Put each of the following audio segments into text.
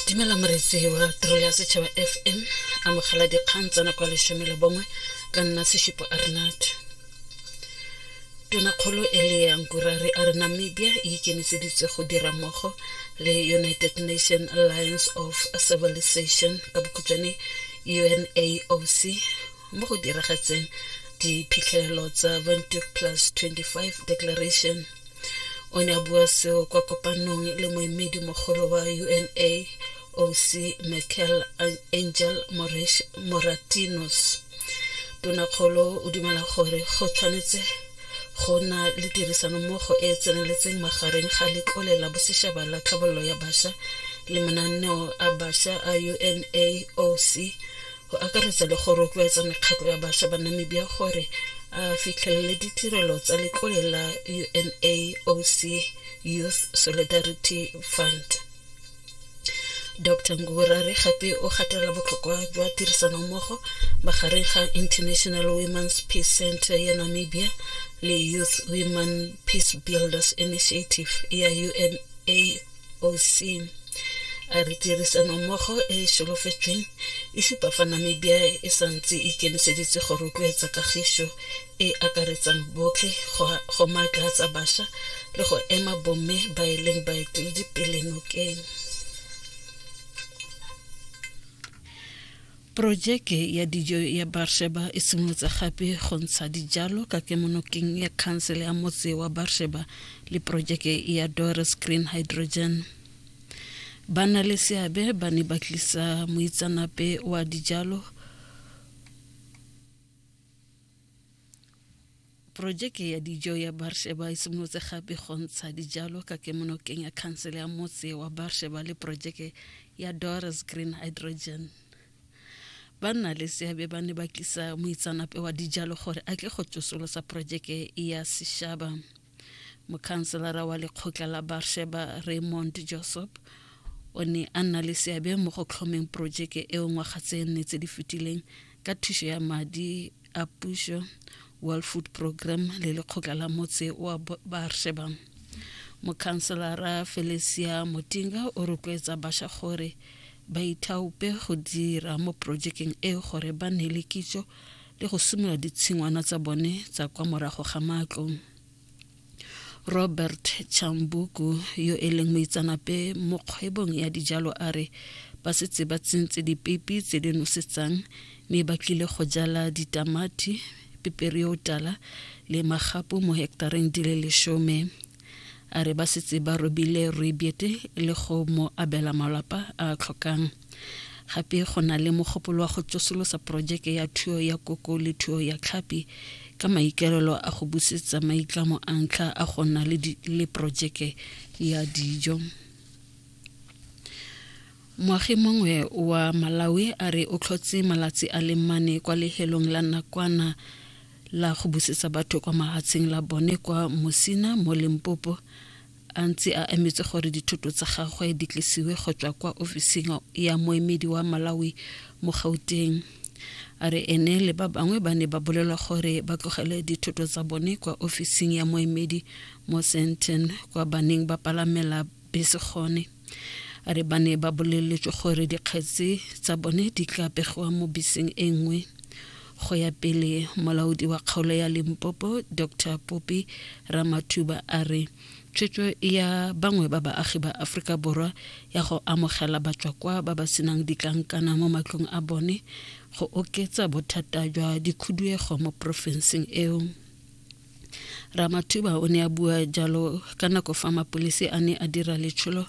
dumela moretsi wa tiro ya setšhaba fm amogela dikgang tsa nako ya lesome le bongwe ka nna seshipo arnat tonakgolo e le ya nkurare a re namibia e ikemiseditse go dira mmogo le united nation alliance of civilization ka bokhutshwane unaoc mo go diragatseng diphitlhelelo tsa 20 plus 25 declaration o ne a bua seo kwa kopanong le moemedi mogolo wa una oc michael angel moratinos tonakgolo o dumela gore go tshwanetse go na le tirisanommogo e e tseneletseng magareng ga letlole la bosetšhaba la tlhabololo ya bašwa le mananeo a bašwa a unaoc go akaretsa le go rotloetsa mekgatlho ya bašwa ba namibia gore a fitlhelele ditirelo tsa letlole la unaoc youth solidarity fund dr ngurare gape o gatelela botlhokwa jwa tirisanommogo magareng ga international women's peace center ya namibia le youth women peace builders initiative ya una oc a re tirisano mmogo e e solofetsweng e supa fa namibia e sa ntse e ikemiseditse go rotloetsa kagiso e akaretsang botlhe go maatlaatsa bašwa le go ema bomme ba e leng baeteledipele nokeng Porojeke ya dijo ya Barsheba e simolotse gape go ntsha dijalo ka kemonokeng ya khansele ya motse wa Barsheba le porojeke ya Doris Green Hydrogen. Ba na le seabe ba ne ba tlisa moitsanape wa dijalo Porojeke ya dijo ya Barsheba e simolotse gape go ntsha dijalo ka kemonokeng ya khansele ya motse wa Barsheba le porojeke ya Doris Green Hydrogen. Ba nna le seabe ba ne ba tlisa moitsanape wa dijalo gore a tle go tsosolosa porojeke ya seshaba. Mokhanselara wa lekgotla la Barsheba Raymond Josop o ne a nna le seabe mo go tlhomeng porojeke eo ngwaga tse nne tse di fetileng ka thuso ya madi a puso world food program le lekgotla la motse wa baarsheba mokhanselara felicia motinga o rotloetsa basha gore ba ithaope go dira mo projekeng e gore ba ne le kitso le go simolola ditshingwana tsa bone tsa kwa morago ga matlo robert chambuku yo e leng moitsanape mo kgwebong ya dijalo a re ba setse ba tsentse dipepi tse di nosetsang mme ba tlile go jala ditamati peperi yo tala le magapu mo hektareng di le lesome a re ba setse ba robile rooibete le go mo abela malapa a tlhokang Gape go na le mogopolo wa go tsosolosa porojeke ya thuo ya koko le thuo ya tlhapi ka maikaelelo a go busetsa maitlamo a ntlha a go nna le, le porojeke ya dijo. Moagi mongwe wa Malawi a re o tlhotse malatsi a le mane kwa lehelong la nakwana la go busetsa batho kwa mahatsheng la bone kwa Musina mo Limpopo a ntse a emetse gore dithoto tsa gagwe di tlisiwe go tswa kwa ofising ya moemedi wa malawi mo gauteng a re ene le ba bangwe ba ne ba bolelwa gore ba tlogele dithoto tsa bone kwa ofising ya moemedi mo senton kwa baneng ba palamela bese gone a re ba ne ba boleletswe gore dikgetsi tsa bone di tla pegiwa mo beseng e nngwe go ya pele molaodi wa kgaolo ya limpopo dr popi ramathuba a re tshwetso ya bangwe ba baagi ba aforika borwa ya go amogela batswakwa ba ba senang ditlankana mo matlong a bone go oketsa bothata jwa dikhuduego mo porofenseng eo Ramathuba o ne a bua jalo ka nako fa mapolese a ne a dira letsholo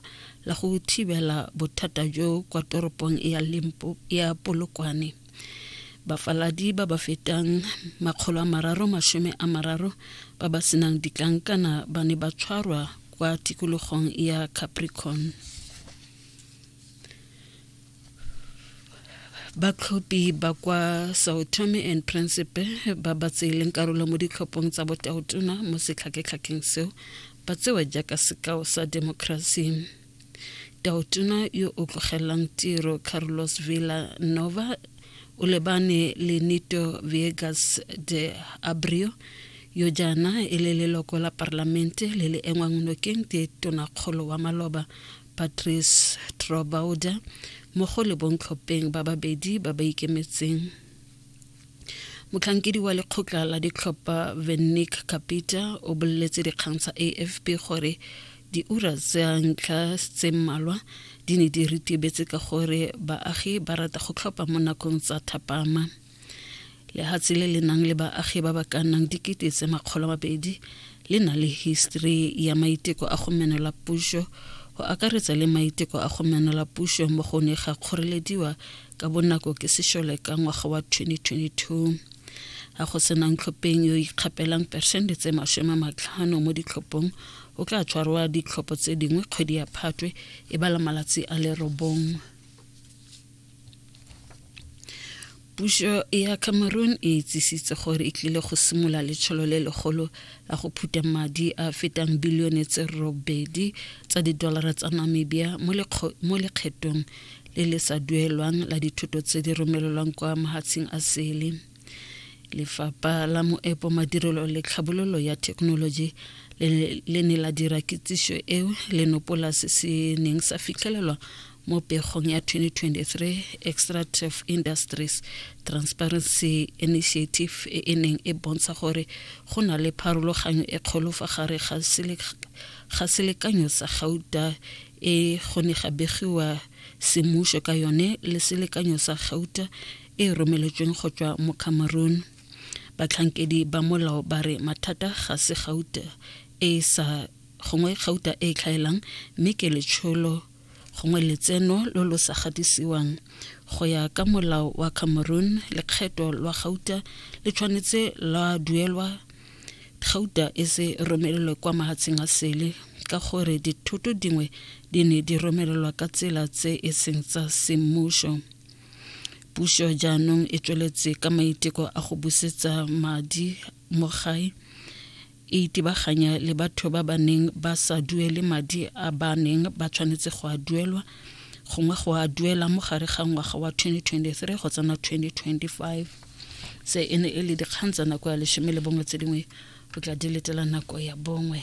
la go thibela bothata jo kwa toropong ya Limpo ya Polokwane. Bafaladi ba ba fetang makgolo a mararo masome a mararo ba ba senang ditlankana ba ne ba tshwarwa kwa tikologong ya Capricorn. batlhophi ba kwa sao tome and principe ba ba tseeleng karolo mo ditlhophong tsa botaotona mo setlhaketlhakeng seo ba tsewa jaaka sekao sa demokrasi taotona yo o tlogelelang tiro carlos villa nova o lebane le nito viegas de abrio yo jaana e le leloko la parlamente le le engwang nokeng ke tonakgolo wa maloba patrice trobauder mmogo le bontlhopheng ba babedi ba ba ikemetseng motlhankedi wa lekgotla la ditlhopha vennick capita o boleletse dikgang tsa afp gore diura tsa ntlha tse mmalwa di ne di ritibetse ka gore baagi ba rata go tlhopha mo nakong tsa thapama lehatshe le le nang le baagi ba ba ka nnang dikete tse makgolo mabedi le na le history ya maiteko a go menola puso go akaretsa le maiteko a go menola puso mo go ne ga kgorelediwa ka bonako ke sešole ka ngwaga wa 2022 ga go senang tlhopheng yo ikgapelang persente tse masome matlhano mo ditlhophong o tla tshwarwa ditlhopho tse dingwe kgwedi ya phatwe e bala malatsi a lerobong puso ya cameroon e itsisitse gore e tlile go simolola letsholo le legolo la go phutha madi a fetang bilione tse robedi tsa didolara tsa namibia mo lekgethong le le sa duelwang la dithoto tse di romelelwang kwa mahatsheng a sele lefapha la moepo madirelo le tlhabololo ya thekenoloji le ne la dira kitsiso eo le nopola se se neng sa fitlhelelwa mo pegong ya 2023 extractive industries transparency initiative e e neng e bontsha gore go na le pharologanyo e kgolo fa gare ga selekanyo sa gauta e go ne ga begiwa semmušo ka yone le selekanyo sa gauta e romeletsweng go tswa mo cameroon batlhankedi ba molao ba re mathata ga se gauta e sa gongwe gauta e tlhaelang mme ke letsholo gongwe letseno lo lo sa gadisiwang go ya ka molao wa cameroon lekgetho lwa gauta le tshwanetse la duelwa gauta e se romelelwe kwa mahatsheng a sele ka gore dithoto dingwe di ne di romelelwa ka tsela tse e seng tsa semmušo puso jaanong e tsweletse ka maiteko a go busetsa madi mo gae e itebaganya le batho ba ba neng ba sa duele madi a ba neng ba tshwanetse go a duelwa gongwe go a duela mo gare ga ngwaga wa 2023 go tsena 2025 se e ne e le dikgang tsa nako ya lesome le bongwe tse dingwe o tla di letela nako ya bongwe